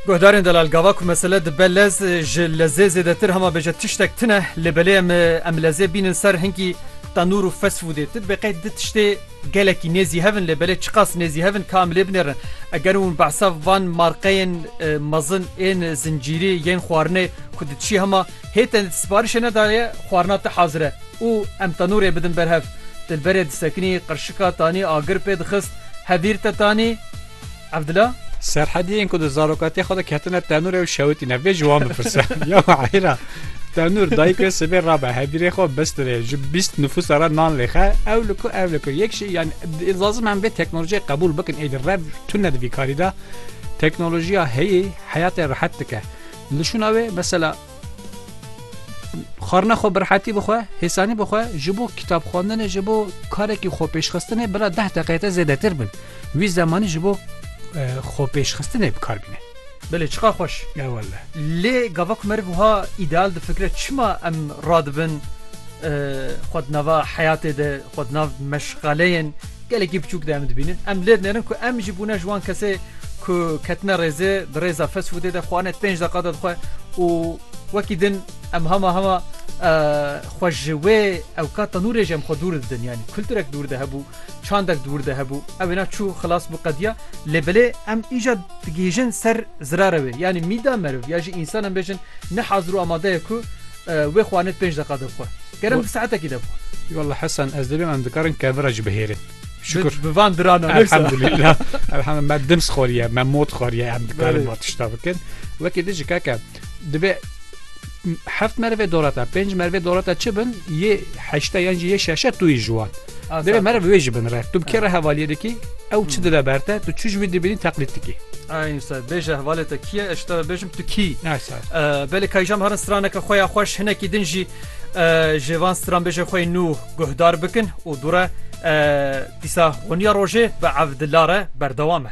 Guhdarên delal gava ku mesele dibe lez ji lezê zêdetir hema bêje tiştek tune lê belê em em lezê bînin ser hinkî tenûr û fast foodê. Ti dibê qey di tiştê gelekî nêzî hev in lê belê çiqas nêzî hev in ka em lê binêrin. Eger hûn behsa van marqeyên mezin ên zincîrî yên xwarinê ku di tişî hema Hê te siparişê nedaye xwarina te hazir e û em tenûrê bidin ber hev. Dilberê disekinî qirşika tanî agir pê dixist hevîr te tanî Evdila. Serhediyên ku di zarokatiyê xwe de ketine tenûrê û şewitîne vê ji wan bipirse, Ya Wahîra, tenûr dayîk wê sibê rabe hevîrê xwe bistirê ji bîst nifûsa re nan lêxe, ew li ku ev li ku yek jî yan lazim em vê teknolojiyê qebûl bikin êdî rev tune di vî karî de teknolojiya heyî heyatê rehet dike. Nişûna wê mesela xwarina xwe bi rehetî bixwe, hêsanî bixwe, ji bo kitap xwendinê ji bo karekî xwepêşxistinê bila deh deqeyê te zêdetir bin. Wî zemanî ji bo xwepêşxistinê bi kar bîne. Belê çiqa xweş. E wele. Lê gava ku meriv wiha îdeal difikire çima em radibin xwe di nava heyatê de Xwe di nav meşxaleyên gelekî biçûk de em dibînin. Em lêv nêrin ku em jî bûne ji wan kesê ku ketine rêzê di rêza fast foodê de xwarinê di pênc deqa de dixwe û wekî din em hema hema xwe ji wê ewka tenûrê jî em xwe dûr didin yanî kulturek dûr de hebû çandek dûr de hebû ew êna çû xilas bû qediya lê belê em îca digihîjin ser zirare wê yanî mîda meriv ya jî însan em bêjin ne hazir û amadeye ku Wê xwanet pênc deqa de bixwe. Kerem bi saetekî de bixwe. Walla Hesen ez dibim em dikarin kevira jî bihêrin. Şükür. Bi van diran o. Elhamdülillah. Elhamdülillah. Me dim sxoriye, me mod xoriye em dikarin ba tişta bikin. Wekî dijî keke divê heft merve dorata, pênc merve dorata çi bin, yê heşte yan jî yê şeşe tu yî ji wan. Deve mera bi wê jî bin re. Tu bi kê re hevaliyê dikî? Ew çi dile ber te? Tu çi ji wî dibînî teqlîd dikî? Aynen sar. Bêje hevalê te kî ye? Ez te ve bêjim tu kî? Ay sar. Belê kayjam herin straneke xwe ya xweş hinekî din jî ji van stranbêjê xwe yê nû guhdar bikin û dûre dîsa honiya rojê bi evdila re berdewam e.